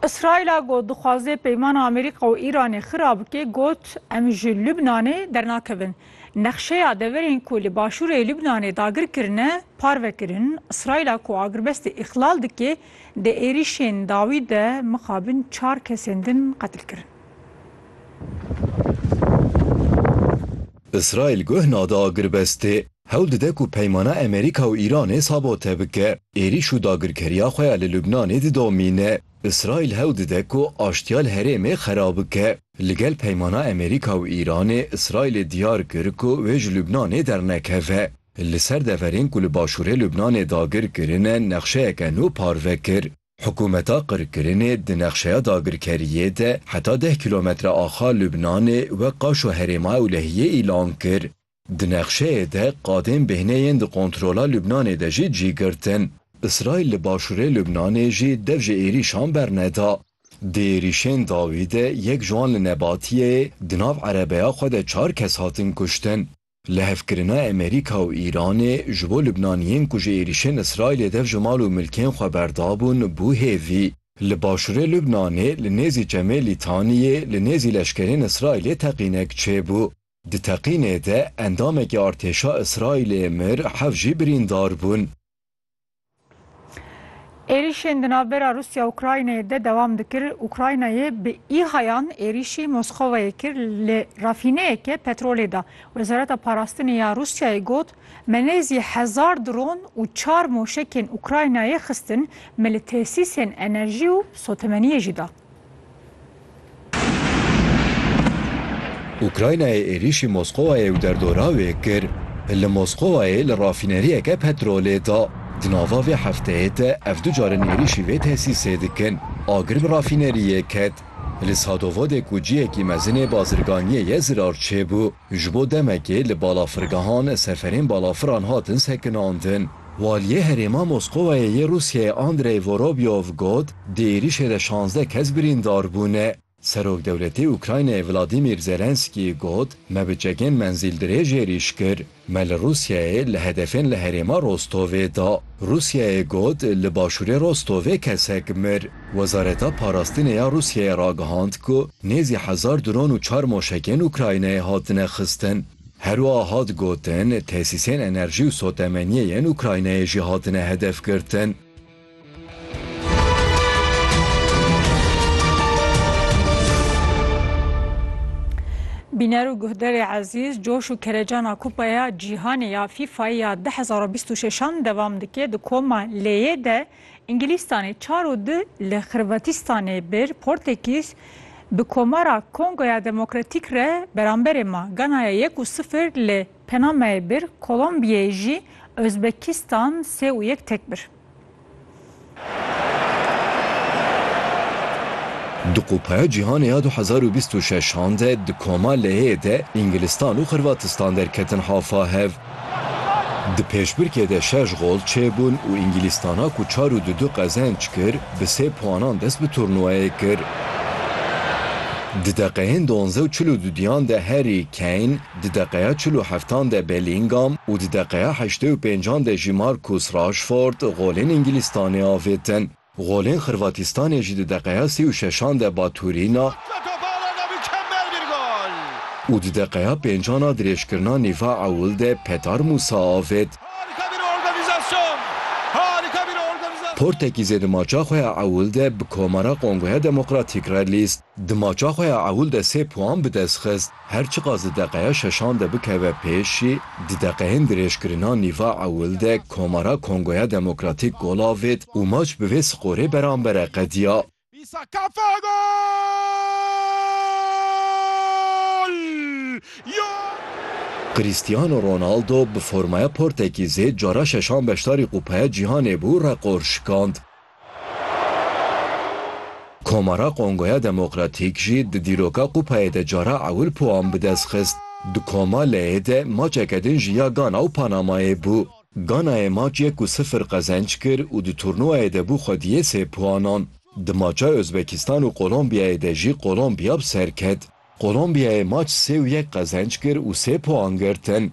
Îsraîla ku dixwaze peymana Amerîka û Îranê xira bike got, Em ji Lubnanê dernakevin. Nexşeya deverên ku li başûrê Lubnanê dagir kirine parve kirin. Îsraîla ku agirbestê îxlal dike, di êrîşên dawî de mixabin çar kesên din qetil kirin. Îsraîl guh nade agirbestê. hewl dide ku peymana Amerîka û Îranê sabote bike, êrîş û dagirkeriya xwe ya li Lubnanê didomîne. Îsraîl hewl dide ku aştiya li herêmê xera bike. Li gel peymana Amerîka û Îranê, Îsraîlê diyar kir ku wê ji Lubnanê dernekeve. Li ser deverên ku li başûrê Lubnanê dagir kirine nexşeyeke nû parve kir. Hikûmeta qirkirinê di nexşeya dagirkeriyê de heta deh kîlometre axa Lubnanê wek qaşo herêma ewlehiyê îlan kir. Di nexşeyê de qadên bêhne yên di kontrola Lubnanê de jî cî girtin. Îsraîl li başûrê Lubnanê jî dev ji êrîşan berneda. Di êrîşên dawî de yek ji wan li Nebatiyeyê di nav erebeya xwe de çar kes hatin kuştin. Lihevkirina Emerîka û Îranê ji bo Lubnaniyên ku ji êrîşên Îsraîlê dev ji mal û milkên xwe berdabûn bû hêvî. Li başûrê Lubnanê li nêzî çemê Lîtaniyê li nêzî leşkerên Îsraîlê teqînek çêbû. Di teqînê de endamekî artêşa Îsraîlê mir, heft jî birîndar bûn. Êrîşên di navbera Rûsya û Ukraynayê de dewam dikir. Ukraynayê bi îhayan êrîşî Moskovayê kir li rafîneyeke petrolê de. Wezareta Parastinê ya Rûsyayê got, Me nêzî hezar dron û çar moşekên Ukraynayê xistin, me li tesîsên enerjî û sotemeniyê jî da. Ukraynayê êrîşî Moskowayê û derdora wê kir, li Moskowayê li rafîneriyeke petrolê de. Di nava vê hefteyê de ev du car in êrîşî vê tesîsê dikin. Agir bi rafîneriyê ket. Li Sadovodê ku cihekî mezin ê bazirganiyê ye zirar çêbû. Ji bo demekê li balafirgehan seferên balafiran hatin sekinandin. Waliyê herêma Moskowayê yê Rûsyayê Andrey Vorobyov got, Di êrîşê de şazdeh kes birîndar bûne. Serokdewletê Ukraynayê Vladîmîr Zelenskî got, Me bi çekên menzîldirêj êrîş kir. Me li Rûsyayê li hedefên li herêma Rostovê da. Rûsyayê got, Li başûrê Rostovê kesek mir. Wezareta Parastinê ya Rûsyayê ragihand ku nêzî hezar dron û çar moşekên Ukraynayê hatine xistin. Herwiha hat gotin, tesîsên enerjî û sotemeniyê yên Ukraynayê jî hatine hedefgirtin. Bîner û guhdarê ezîz, coş û kerecana Kupaya Cîhanê ya FIFAyê ya du hezar û bîst û şeş an devam dike. Di koma L'yê de Îngilîstanê çar û du li Xirvatîstanê bir Portekîz bi Komara Kongoya Demokratîk re beramberê ma. Ganaya yek û sifir li Penamayê bir Kolombiyeyê jî Ozbekîstan sê û yek tek bir. Di Kupaya Cîhanê ya du hezar û bîst û şeş an de di Koma Leyê de Îngilîstan û Xirvatistan derketin hafa hev. Di pêşbirkê de şeş gol çêbûn û Îngîlîstana ku çar û du du qezenç kir, bi sê puanan dest bi turnûwayê kir. Di deqeyên duanze û çil û du diyan de Harry Kane, di deqeya çil û heftan de Bellingham û di deqeya heştê û pêncan de jî Marcus Rashford golên Îngîlîstanê avêtin. Golên Xirvatistanê jî di deqeya sî û şeşan de Baturîna û di deqeya pêncan a dirêjkirina nîva ewil de Petar Mûsa avêt. Portekîzê di maça xwe ya ewil de bi Komara Kongoya Demokratîk re lîst. Di maça xwe ya ewil de sê puan bi dest xist. Her çiqas di deqeya şeşan de bikeve pêş jî, di deqeyên dirêjkirina nîva ewil de Komara Kongoya Demokratîk gol avêt û maç bi vê skorê berambere qediya. Cristiano Ronaldo bi formaya Portekîzê cara şeşan beşdarî Kupaya Cîhanê bû reqor şikand. Komara Kongoya Demokratîk jî di dîroka Kupayê de cara ewil puan bi dest xist. Di koma leyê de maçeke din jî ya Gana û Panamayê bû. Ganayê maç yek û sifir qezenc kir û di turnûwayê de bû xwediyê sê puanan. Di maça Ozbekistan û Kolombiyayê de jî Kolombiya bi ser ket. Kolombiyayê maç sê û yek qezenc kir û sê puan girtin.